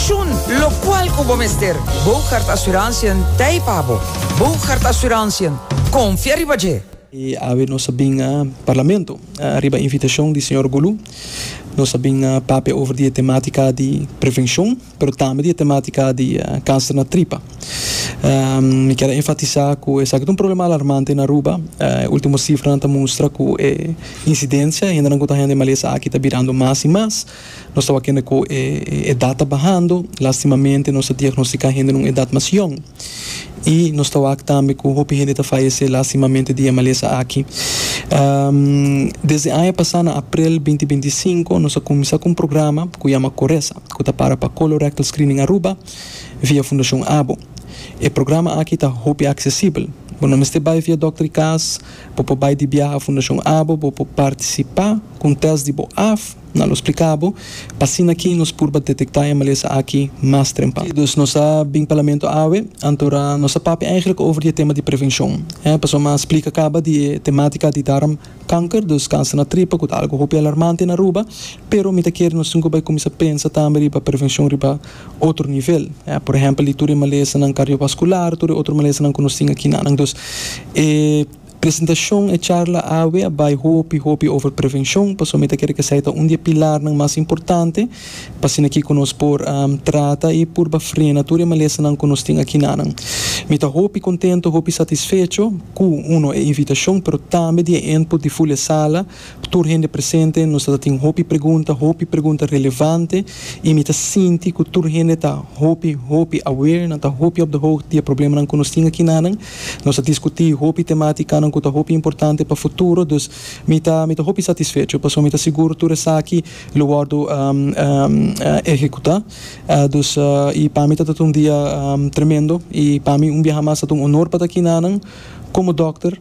Shun locual cu bo mester. Bougaard Assurantiën t'ei pa bo. Bougaard Assurantiën, confia riba dje! E awe nos a bin na Parlamento riba invitacion di señor Gulu. Nos a bin papia over di e tematica di prevencion, pero tambe di e tematica di cancer na tripa. Mi kier a enfatisa cu esaki ta un problema alarmante na Aruba. E ultimo cifranan ta mustra cu e incidencia, hendenan cu ta hende malesa aki, ta birando mas y mas. Nos tabatin kende ku e edat ta bahando, lastimamente nos ta diagnostika hende na un edat mas yòn i nos ta wak tambe ku hopi hende ta fayesé lastimamente di e malesa aki. Desde aña pasá na aprel binti binti i sinku nos a kuminsá ku un programa ku yama Coresa ku ta para pa Colorectal Screening Aruba via Fundashon Abo. E programa aki ta hopi aksesibel, bo no mester bai via dòkter di kas, bo por bai di biaha Fundashon Abo, bo por partisipá ku un tèst di bo af, Na lo spliká bo p'asina ki nos purba detektá e malesa aki mas trempan. Dus nos a bin Parlamento awe, antora nos a papia eigenlijk over di e tema di prevenshon. E pasobra a splika kaba di e temátika di darm kanker, dus kanser na tripa ku ta algu hopi alarmante na Aruba, pero mi ta kere nos tin ku bai kuminsá pensa tambe riba prevenshon riba otro nivel. E por ehèmpel di tur e malesanan kardiovaskular, tur e otro malesanan ku nos tin aki na nan. Dus e. Presentashon, E charla awe a bai hopi hopi over prevenshon, pasobra mi ta kere ku esei ta un di e pilarnan mas importante pa asina kiko nos por trata i purba frena tur e malesanan ku nos tin akinanan. Mi ta hopi kontentu, hopi satisfecho ku, uno, e invitashon, pero tambe di e input di Fulia Sala, Tur hende presente, nos ta ta tin hopi pregunta, hopi pregunta relevante i mi ta sinti ku tur hende ta hopi, hopi aware, nan ta hopi op de hoogte di e problemanan ku nos tin aki nanan. Nos a diskutí hopi tematikanan ku ta hopi importante pa futuro, dus mi ta mi ta hopi satisfecho pasobra mi ta sigur tur esaki lo wòrdu ehekutá. Dus i pa mi ta ta un dia tremendo i pa mi un biaha mas ta ta un honor pa ta aki nanan komo dòkter.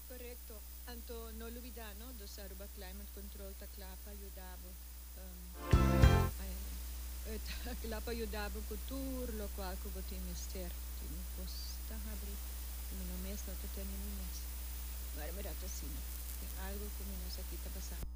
Korekto, anto no lubidá no dos Aruba Climate Control ta kla pa yuda bo ta kla pa yuda bo ku tur lokual ku bo tin mester. Tin un kos ta habri ku mi no mes no ta tende mi mes. Mari mi ret asina. Tin algu ku mi no sa ki ta pasá.